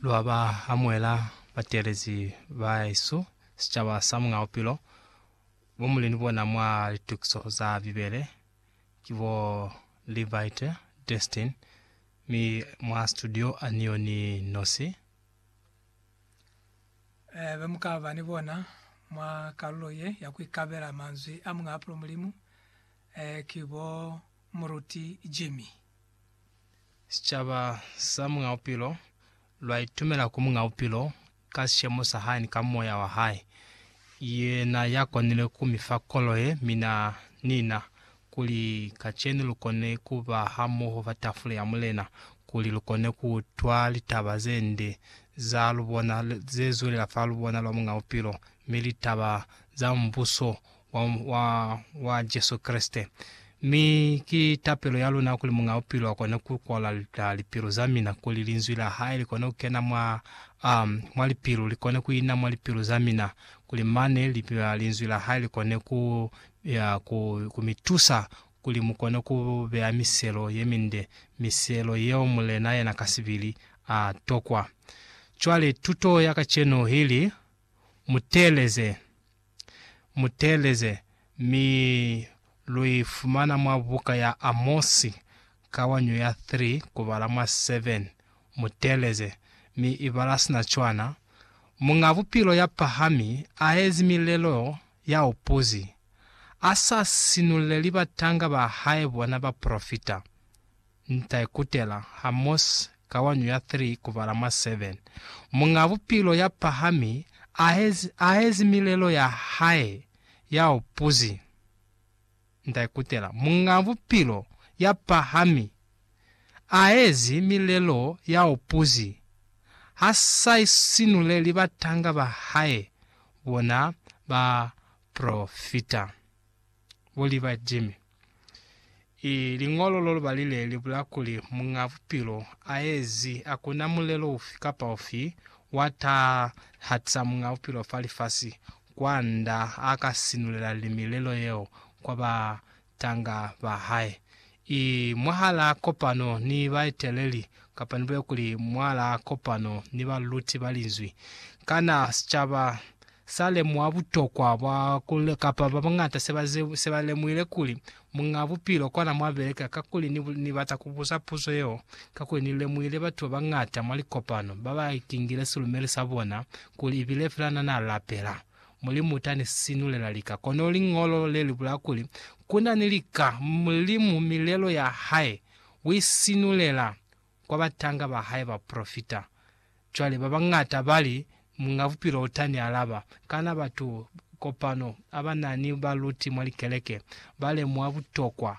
Lwa ba amuhela batelezi ba hesu, sicaba sa Muñ'a Bupilo, bo muli ni bona mwa litukiso za Bibele ki bo Levite Destin mi mwa situdio ani yo ni nosi. Be mu ka ba ni bona mwa kalulo ye ya ku ikabela manzwi a Muñ'a Bupilo Mulimu ki bo Muruti Jimmy. Sicaba sa Muñ'a Bupilo lwa itumela ku Muñ'a Bupilo ka sishemo sa hae ni ka moya wa hae. Yena ya konile ku mi fa kolo ye, mina ni na, kuli kacenu lu kone ku ba hamoho fa tafule ya Mulena, kuli lu kone ku utwa litaba ze nde za lubona ze zulela fa lubona lwa Muñ'a Bupilo, mi litaba za Mubuso wa, wa, wa Jesu Kreste. Mi ki tapelo ya luna kuli Muñ'a Bupilo akone ku kwala ah, lipilu za mina, kuli Linzwi la Hae likone ku kena mwa, um, mwa lipilu, likone ku ina mwa lipilu za mina, kuli mane li, ah, Linzwi la Hae likone ku, ya, ku, ku mi tusa kuli mu kone ku beya miselo ye minde, miselo yeo Mulena yena kasibili a tokwa. Cwale tuto ya kacenu ili, Mu teeleze. muteeleze, mi lu i fumana mwa buka ya Amosi, kawanyo ya 3, kubala mwa 7. Muteeleze, mi i bala sina cwana, Muñ'a Bupilo ya pahami aezi milelo ya upuzi, a sa sinuleli batanga ba hae bona bapolofita. Nta ikutela ha Mose ka wanyu ya 3 kubala mwa 7. Muñ'a Bupilo ya pahami aezi milelo ya hae ya upuzi. Nta ikutela, Muñ'a Bupilo ya pahami aezi milelo ya upuzi, ha sa isinuleli batanga ba hae bona bapolofita. Buli ba Jimmy. I liñolo lo lubali le li bula kuli Muñ'a Bupilo a ezi, Hakuna mulelo ufi kapa ufi wa taha hatisa Muñ'a Bupilo fa lifasi kwanda a ka sinulela limi lelo yeo kwa batanga ba hae. i mwahalaa kopano ni baeteleli kapa nibulele kuli mwalaa kopano ni baluti ba Linzwi. Kana sicaba sa lemuha butokwa bwa ku, kapa ba bañata se ba, se ba lemuhile kuli Muñaa Bupilo kona mwa beleka? Kakuli ni, ni bata ku buza puzo yeo, kakuli ni lemuhile batu ba bañata mwa likopano ba ba kingile silumeli sa bona kuli ibile fela na na lapela. Mulimu ta ni sinulela lika. Kono liñolo le li bula kuli, Ku na ni lika, Mulimu milelo ya hae u i sinulela kwa batanga ba hae bapolofita. Cwale ba bañata ba li, Muñ'a Bupilo u ta ni alaba. Kana batu kopano a ba na ni baluti mwa likeleke ba lemuha butokwa